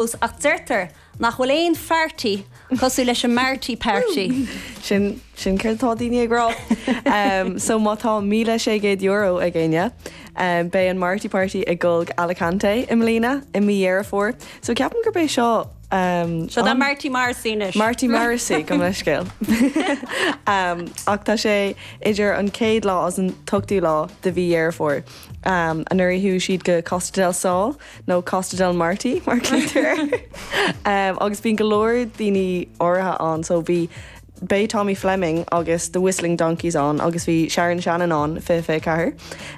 fós, ach deirtear nach bhfuil aon pháirtí cosúil leis an Marty Party. Sin sin céard atá daoine ag rá. So má tá €1,600 ag éinne, beidh an Marty Party ag goil go Alicante i mbliana i mí Dheireadh Fómhair, so ceapaim gurb é seo Seo an Marty Morrissey anois. Marty Morrissey go mbeidh scéal. Ach tá sé idir an chéad lá agus an t-ochtú lá de mhí Dheireadh Fómhair. Anuraidh chuaigh siad go Costa del Sol, nó Costa del Marty mar glaoitear air agus bíonn go leor daoine áirithe ann so bhí Beidh Tommy Fleming agus The Whistling Donkeys ann agus bhí Sharon Shannon ann in 2024.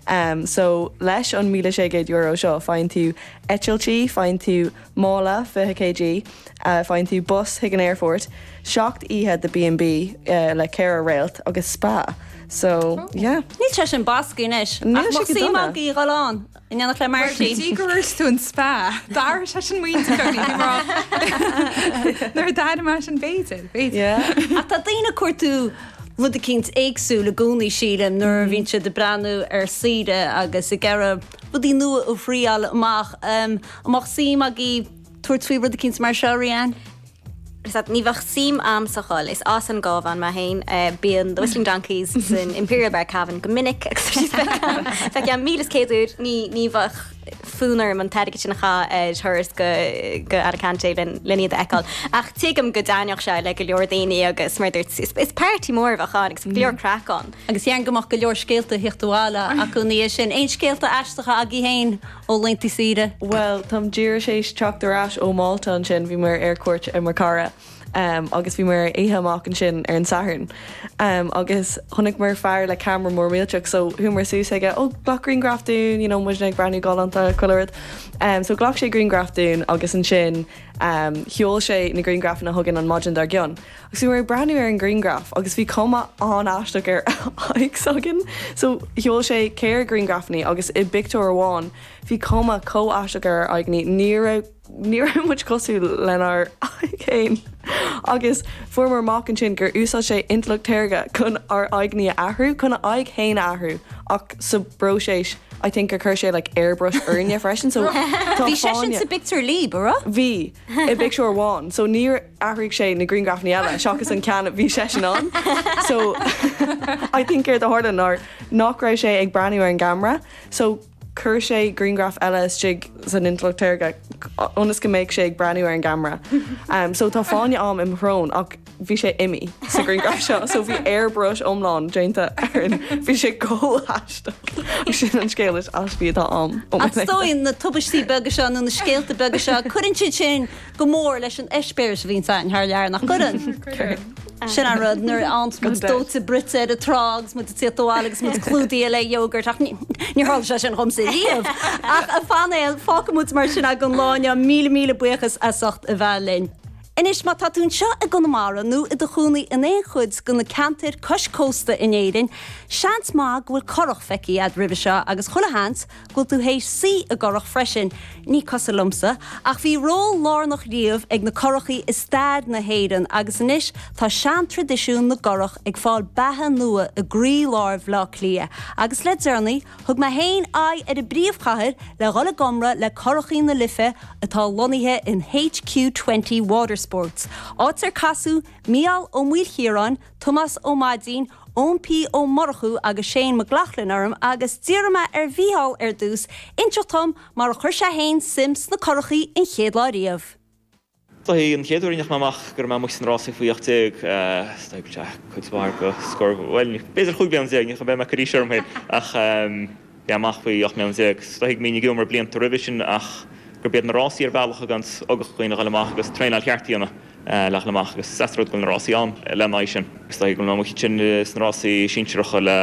Um, so leis an €1,600 seo faigheann tú eitiltí, faigheann tú mála 20 kg, uh, faigheann tú bus chuig an aerfort, 7 oíche de B&B uh, le ceithre réalt agus spa. So, yeah. Níl sé sin bascaí anois. Níl ach sé mo go sách dona. mag í ghalán. In éineacht le Marty. Mar go dtí go raibh tú an spa, d'airigh sé sin muid go dtí go raibh nuair a d'airigh mé sin b'fhéidir, b'fhéidir. Ach tá daoine ag cuartú rud eicínt éagsúil i gcónaí, sílim, nuair a bhíonn siad ag breathnú ar saoire agus ag iarraidh rudaí nua a thriail amach. An mbeadh suim agaibh tabhairt faoi rud eicínt mar seo, Rhiann? Ní bheadh suim a'm go fóill. Is as an gCábhán mé féin. Bíonn The Whistling Donkeys san Imperial Bar Cavan go minic agus bhí spéis ann. Feicim míle is céad uair. Ní, ní bheadh fonn orm an t-airgead sin a chaitheamh ar thuras go, go Alicante len, len iad a fheiceáil. Ach tuigim go dtaitneodh sé le go leor daoine agus mar a dúirt, is, is party mór a bheadh ann agus go leor craic ann. Agus déarfainn go mbeadh go leor scéalta ag tíocht abhaile acu ina dhiaidh sin. Aon scéalta aisteacha agaibh féin? Ó laetanta saoire. Bhuel, tá mé díreach tar éis teacht ar ais ó Mhálta ansin bhí muid ar cuairt ar mo chara agus bhí muid ar oíche amach ansin ar an Satharn agus chonaiceamar fear le camera mór millteach so chuamar suas aige, oh glac griangraf dúinn you know muidne ag breathnú galánta chuile rud so ghlac sé griangraf dúinn agus ansin sheol sé na griangrafanna chugainn an maidin dár gcionn. Agus bhí mé ag breathnú ar an ngrianghraf agus bhí cuma an-aisteach ar aghaidh s'againn. So, sheol sé ceithre ghrianghrafannaí agus i bpictiúr amháin bhí cuma chomh aisteach ar ár aghaidheannaí ní raibh ní raibh muid cosúil lenár aghaidh fhéin. Agus fuaireamar amach ansin gur úsáid sé intleacht shaorga chun ár aghaidheannaí a athrú, chun a aghaidh fhéin a athrú ach sa bpróiseas I think gur chuir sé like airbrush orainne freisin so tá fáinne. Bhí seisean sa bpictiúr libh, an raibh? Bhí, i bpictiúr amháin. So ní raibh. athraigh sé na grianghrafanna eile seachas an ceann a bhí seisean ann so I think céard a tharla ná nach raibh sé ag breathnú ar an gceamara so chuir sé grianghraf eile istigh san intleacht shaorga ionas go mbeadh sé ag breathnú ar an gceamara um, so tá fáinne ám i mo shrón ach bhí sé imithe sa ghrianghraf seo so bhí airbrush iomlán déanta ar an bhí sé go haisteach agus sin an scéal is aistí atá ám. Ach is dóigh na tubaistí beaga seo nó na scéalta beaga seo, cuireann siad sin go mór leis an eispéireas a bhíonn againn thar lear, nach gcuireann? Cuireann. Sin an rud, nuair a fhaigheann muid dóite bruite ar an trá agus muid ag tíocht abhaile agus muid clúdaithe le yogurt, ach níor tharla sé sin dhomsa riamh! Ach a phainéil, fágfaidh muid mar sin agaibh an lá inniu, míle míle buíochas as ucht a bheith linn. Anois, má tá tú anseo i gConamara nó i do chónaí in aon chuid de na ceantair cois cósta in Éirinn, seans maith go bhfuil curach feicthe agat roimhe seo agus, chuile sheans, go bhfuil tú théis suí i gcurach freisin, ní cosúil liomsa, ach bhí ról lárnach riamh ag na curachaí i stair na hÉireann agus anois tá seantraidisiún na gcurach ag fáil beatha nua i gcroílár Bhleá Cliath agus le deireanaí thug mé féin aghaidh ar an bpríomhchathair le dhul ag iomramh le Curachaí na Life atá lonnaithe in HQ20 Watersports, áit ar casadh Mícheál Ó Maoilchiaráin, Tomás Ó Maidín, Eoin P. Ó Murchú agus Shane McLoughlin orm agus d'iarr mé ar Mhícheál, ar dtús, inseacht dhom mar a chuir sé féin suim sna curachaí an chéad lá riamh. Is dóigh an chéad uair a ndeachaigh mé amach go raibh mé amuigh sna rásaí faoi ocht déag, b'fhéidir chúig bliana déag, ní bheidh mé ag cur aois orm féin ach. é amach faoi 18 mbliana. Is dóigh go mbínn ag iomramh blianta roimhe sin ach gurb iad na rásaí ar bhealach a thuganns ugach do dhaoine a dhul amach agus traenáil cheart a dhéanamh le dhul amach agus is deas an rud go bhfuil na rásaí ann lena aghaidh sin. Is dóigh go bhfuil mé amuigh ansin sna rásaí sinsearacha le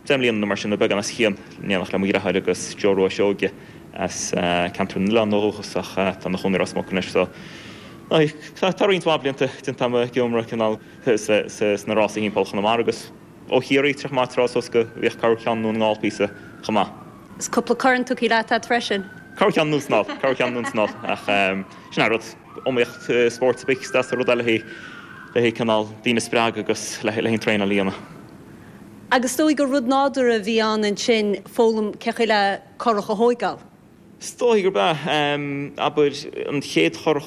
deich mbliana nó mar sin, nó beagán as cionn, in éineacht le mo dhreatháir agus Joe Rua Seoige as ceantar na nOileán ó dhúchas ach atá ina chónaí i Ros Muc anois. So tá roinnt mhaith blianta déanta agam ag iomramh leo sna rásaí thimpeall Chonamara agus. Ó Chiarraí, théadh muid trasna suas go mbíodh corrcheann i nDún na nGall píosa chomh maith. Is cúpla corn tugthaí leat a't freisin. Corrcheann anonn is anall, corrcheann anonn is anall, ach sin é an rud, iomaíocht i spórt ar bith, is deas an rud é le haghaidh, le haghaidh cineál daoine a spreagadh agus le haghaidh an traenáil a dhéanamh. Ach is dóigh gur rud nádúrtha a bhí ann ansin foghlaim cén chaoi le curach a thóigeál? Is dóigh gurb ea. Abair, an chéad churach.